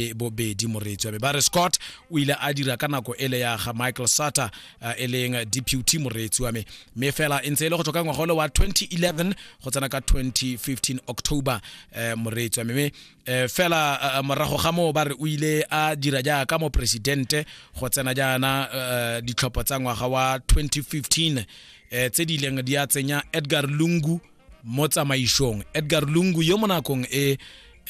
e bobedi moreetswa be ba re scott o ile a dira ka nako ele ya ga michael sutter uh, e leng deputy moreetsi wa me mme fela e ntse e le go tswa ka ngwaga ole wa 2011 go tsena ka 2015 october uh, moreetsi wa me mme uh, fela uh, morago ga moo ba re o ile a dira jaaka moporesidente go tsena jaana uh, ditlhopho tsa ngwaga wa 2015 uh, tse di ileng di a tsenya edgar lungu mo tsamaisong edgar lungu yo mo nakong e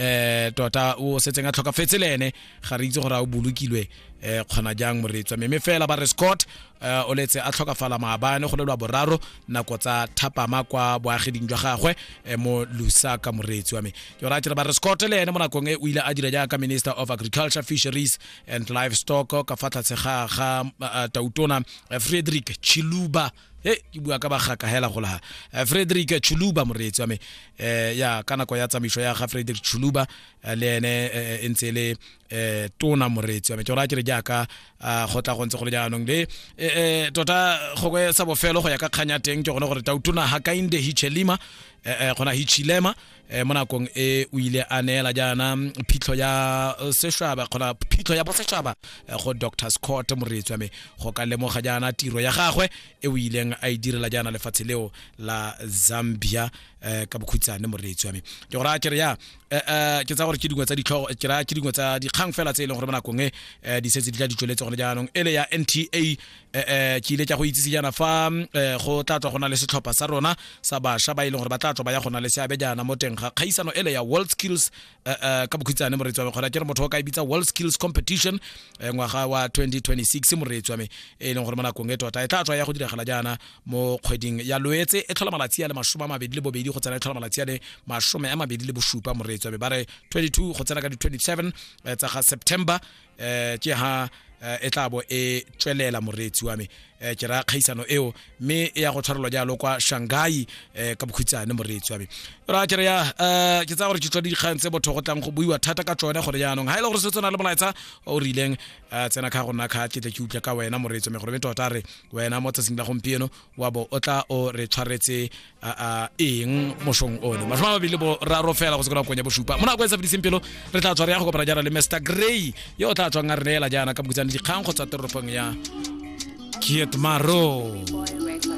eh tota o setseng a tlhokafetse le ene ga re itse gore a o bolokilwe eh kgona jang moretswa mme fela ba re scott eh, o letse a tlhokafala maabane go lelwa boraro nako tsa thapama kwa boageding jwa gagwe eh, mo lusaka moretsi wa me ke o ratile ba re scott le ene mo nakong e o ile a dira jaaka minister of agriculture fisheries and livestock ka fa tlhatse ga ga eh, tautona eh, frederick chiluba he ke bua ka bagaka hela go laha eh, frederick chuluba moreetsi wa me eh, ya ka nako ya tsamaiso ya ga frederick chuluba eh, le ene e ntse le um tona moreetsi wa me ke gore a ke re jaaka ah, go tla go ntse go le jaanong le um tota gongwe sa bofelo go ya ka kganya teng ke gone gore tautona hakainde hichelima um gona hichilema eh, mo nakong e o ile a neela jaana phitlho ya eh, sešaba kgona phitlho ya bosetšhaba eh, go dr scott moreetswa me go ka lemoga jaana tiro ya gagwe e o ileng a e direla jaana lefatshe leo la zambia um ka bokhutshane moreetswa me ke go raya kere ya ke tsa gore ke dingwe tsa ditlhogo ke raya ke dingwe tsa dikgang fela tse e leng gore mo nakong e di setse di tla di tsweletse gone jaanong e le ya nta eh, eh, ke ile tša go itsise jaana fa eh, go tla tswa go na le setlhopha sa rona sa bašwa ba e leng gore ba tla tswa ba ya go na le seabe jaana mo teng ga kgaisano ele ya world skills eh, eh, ka bokhutshane moreetsi wa me kgona ke re motho o ka e bitsa world skills competition eh, ngwaga wa 2026 moreetsi wa me e leng gore mo nakong e tota e tla tswa ya go diragala jaana mo kgweding ya loetse e tlhola malatsi a le masome a mabedi le bobedi go tsena e tlhola malatsi a le masome a mabedi le bosupa moreetsi wa me ba re 22 go tsena ka di-27 eh, tsa ga september eh ke ha eh, e tla bo e tswelela moreetsi wa me eh, ke raya kgaisano eo mme e ya go tshwarelwa jalo kwa shanghai eh, ka bokhutsane moreetsi wa me ra ke re ya eh, ke tsaya gore ke tswa dikgang tse botho go tlang go buiwa thata ka tsone gore jaanong ga e le gore se tsena le molaetsa o rileng eh, tsena kha go nna kha ke tle ke utlwe ka wena moreetsi wa me gore me tota re wena mo tsatsing la gompieno wa bo o tla o re tshwaretse eng mosong one masome a mabedi le boraro fela go sekona konya bosupa mo nako e sa fediseng pelo re tla tshware ya go kopana jaana le mr gray yo o tla tswang a re neela jaana ka bokutsane dikgang go tswa toropong ya kietmaro